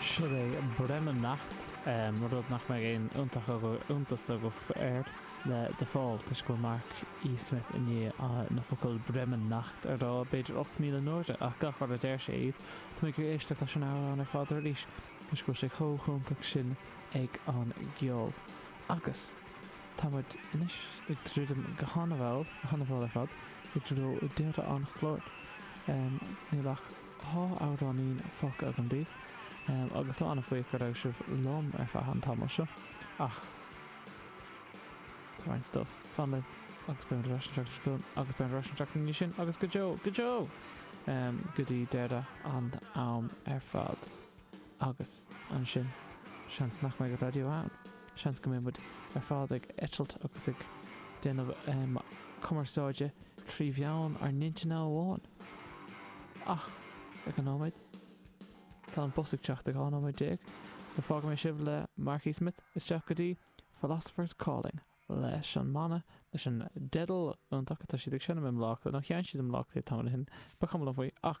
Sin é Bremen-Nacht', rud nach mbeidh aon iontas agaibh air, le The Fall, toisc go bhfuil Mark E. Smith i ndiaidh na focail 'Bremen Nacht' a rá b'fhéidir 8,000 n-uaire, ach gach uair a deir sé iad, tá mé ag iarraidh éisteacht leis an amhrán ar fad arís, toisc go bhfuil sé chomh hiontach sin ag an gceol. Agus. Tá muid anois ag druidim go han-mhall, han-mhall ar fad, i dtreo deireadh an chláir. Níl ach dhá amhráinín fágtha agam daoibh, agus táim an-bhuíoch go raibh sibh liom ar feadh an tamaill seo, ach tá roinnt stuif fan linn, agus beidh muid ar ais an tseachtain seo chugainn, agus beidh muid ar ais an tseachtain ina dhiaidh sin, agus go deo, go deo! go dtí deireadh an am ar fad. Agus ansin, seans nach mbeidh raidió ann. Seans go mbeidh muid ar fad ag eitilt agus ag déanamh cumarsáide trí mheán ár n-intinne amháin. Ach, ag an nóiméad, tá an bus ag teacht i 12 nóiméad, so fágfaidh mé sibh le Mark E. Smith isteach go dtí Philosopher's Calling leis an mbanna, leis an dteideal iontach atá siad ag seinm i mBaile Átha Cliath, nó sheinn siad i mBaile Átha Cliath tamall ó shin, ba chuma liom faoi, ach.